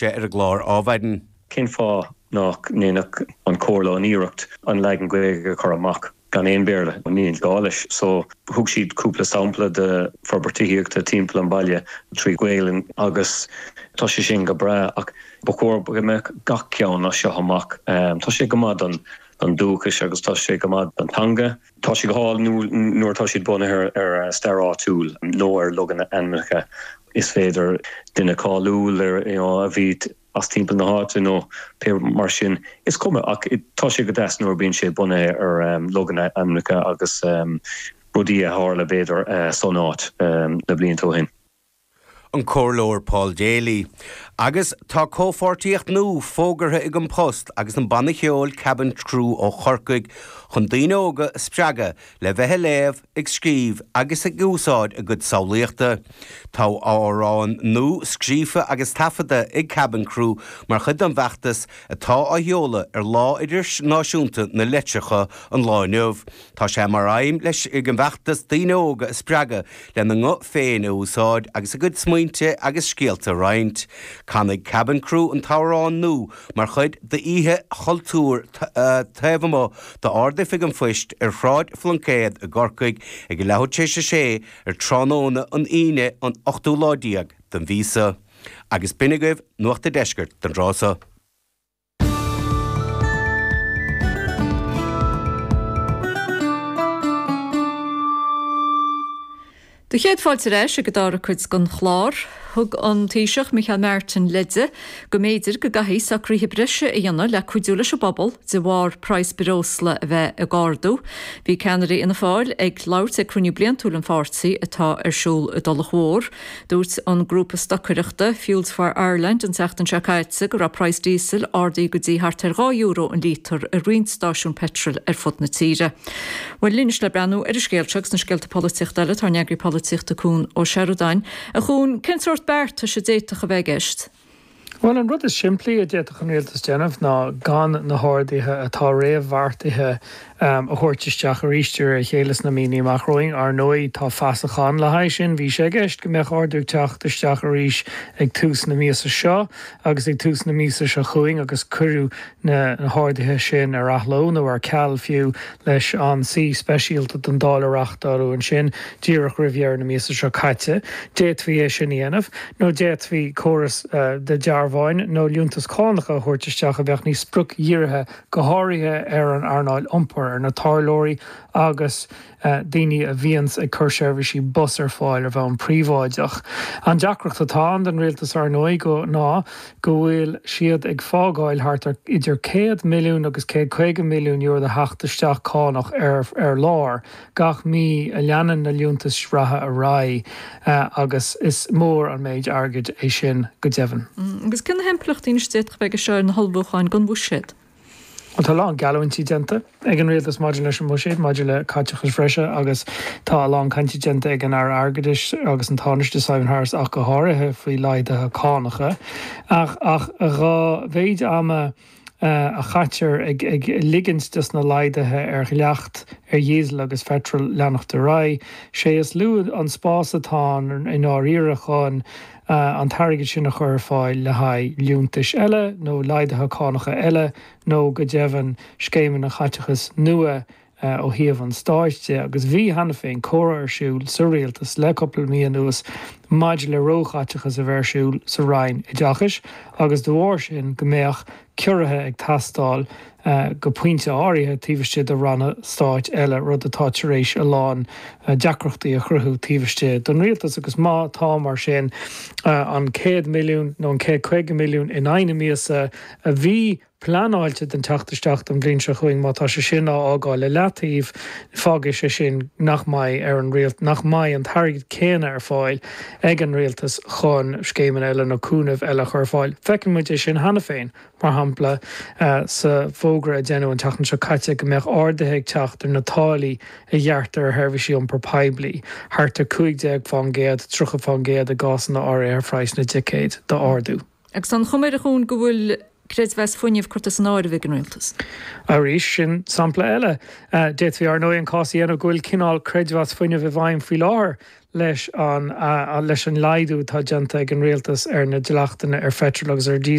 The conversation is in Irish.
sé ar an gclár ábhair in. Cén fáth nach ndéanfadh an Chomhairle an iarracht an leagan Gaeilge a chur amach gan aon Bhéarla ann? Ní gá leis. So, thug siad cúpla sampla de forbairtí tithíochta timpeall an bhaile trí Ghaelainn agus tá sé sin go breá ach ba chóir go mbeadh gach ceann as seo amach. Tá sé go maith don dúchas agus tá sé go maith don teanga. Tá sé go hálainn nuair atá siad bunaithe ar stair áitiúil nó ar logainmneacha. Is féidir duine cáiliúil a bhí as timpeall na háite nó pé rud mar sin, is cuma, ach tá sé go deas nuair a bhíonn sé bunaithe ar logainmneacha agus rudaí a tharla b'fhéidir san áit na blianta ó shin. an Comhairleoir Paul Daly, agus tá comhpháirtíocht nua fógartha ag An Post agus an banna ceoil Kabin Crew ó Chorcaigh chun daoine óga a spreagadh le bheith ag léamh, ag scríobh agus ag úsáid a gcuid samhlaíochta. Tá amhrán nua scríofa agus taifeadta ag Kabin Crew mar chuid den bhfeachtas atá á sheoladh ar Lá Idirnáisiúnta na Litearthachta an lá inniu. Tá sé mar aidhm leis an bhfeachtas daoine óga a spreagadh lena nguth féin a úsáid agus a gcuid smaointe agus scéalta a roinnt. Canfaidh Kabin Crew an t-amhrán nua mar chuid d'Oíche Chultúir taobh amuigh d'Ard-Oifig an Phoist ar Shráid Phluincéad i gCorcaigh ag a leathuair tar éis a sé ar tráthnóna an Aoine, an 8ú lá déag den mhí seo. Agus b'in agaibh Nuacht an Deiscirt don dtráth so. Bhur gcéad fáilte ar ais ag an dara cuid den chlár. Thug an Taoiseach Micheál Martin leid go mb'fhéidir go gcaithfí socruithe breise a dhéanamh le cuidiú leis an bpobal de bharr praghas breosla a bheith ag ardú. Bhí ceannaire Fhianna Fáil ag labhairt ag cruinniú bliantúil an pháirtí atá ar siúl i dTulach Mhór Dúirt an grúpa stocaireachta Fuels for Ireland an tseachtain seo caite go raibh praghas diesel ardaithe go dtí thart ar dhá euro an lítear i roinnt stáisiún petrol ar fud na tíre. Bhuel, anois le breathnú ar an scéal seo agus na scéalta polaitíochta eile, tá ár n-eagarthóir polaitíochta Cuan Ó Seireadáin. A Chuain, cén sórt beartais a d'fhéadfadh a bheith i gceist? Bhuel, an rud is simplí a d'fhéadfadh an rialtas déanamh ná gan na harduithe atá réamhbheartaithe a thabhairt isteach arís de réir a chéile sna míonna amach romhainn. Ar ndóigh, tá fasach ann le haghaidh sin. Bhí sé i gceist go mbeadh ardú ag teacht isteach arís ag tús na míosa seo agus ag tús na míosa seo chugainn agus cuireadh na harduithe sin ar athló, nó ar ceal fiú, leis an suí speisialta don Dáil a reáchtáladh ansin díreach roimh dheireadh na míosa seo caite. D'fhéadfaí é sin a dhéanamh, nó d'fhéadfaí córas de dhearbháin nó liúntais chánacha a thabhairt isteach a bheadh níos spriocdhírithe, go háirithe ar an earnáil iompair, ar na tarlóirí agus, daoine a bhíonns ag cur seirbhísí bus ar fáil ar bhonn príobháideach. An deacracht atá ann don rialtas, ar ndóigh, ná go bhfuil siad ag fágáil thart ar idir céad milliún agus céad caoga milliún euro de theacht isteach cánach ar lár gach mí a leanann na liúntais reatha ar aghaidh agus is mór an méid airgid é sin go deimhin. Agus cé na himpleachtaí anois a d'fhéadfadh a bheith aige seo ar na hullmhúcháin don Bhuiséad? Tá a lán geallúintí déanta ag an rialtas maidir leis an mbuiséad maidir le caiteachas breise agus tá a lán cainte déanta ag an Aire Airgeadais agus an Tánaiste, Simon Harris ach go háirithe, faoi laghduithe cánacha. Ach dhá mhéid ama a chaitear ag ligint dos na laghduithe ar dhleacht ar dhíosal agus peitreal leanacht ar aghaidh, sé is lú an spás atá ann i ndáiríre chun, an t-airgead sin a chur ar fáil le haghaidh liúntais eile nó laghduithe cánacha eile nó, go deimhin, scéimeanna chaiteachais nua ó thaobh an stáit de, agus bhí, cheana féin, comhrá ar siúl sa rialtas le cúpla mí anuas maidir le róchaiteachas a bheith ar siúl sa Roinn Oideachais agus, de bharr sin, go mbeadh. ciorruithe ag teastáil go pointe áirithe taobh istigh de ranna stáit eile, rud atá tar éis a lán deacrachtaí a chruthú taobh istigh den rialtas, agus má tá, mar sin, an 100 milliún nó an 150 milliún in aghaidh na míosa a bhí pleanáilte don teacht isteach don bhliain seo chugainn, má tá sé sin á fhágáil le leataobh, fágfaidh sé sin nach mbeidh ar an rialt nach mbeidh an t-airgead céanna ar fáil. ag an rialtas chun scéimeanna eile nó cúnamh eile a chur ar fáil. Feiceann muid é sin cheana féin, mar shampla, sa bhfógra a deineadh an tseachtain seo caite go mbeadh arduithe ag teacht ar na táillí a ghearrtar ar sheirbhísí iompar poiblí, thart ar 15 fán gcéad, 30 fán gcéad i gcásanna áirithe ar phraghas na dticéad, dá ardú. Agus tá an chuma ar an scéal go bhfuil creidmheas fuinnimh curtha as an áireamh ag an Rialtas. Arís, sin sampla eile. D'fhéadfaí, ar ndóigh, an cás a dhéanamh go bhfuil cineál creidmheas fuinnimh i bhfeidhm faoi láthair leis an leis an laghdú atá déanta ag an Rialtas ar na dleachtanna ar pheitreal agus ar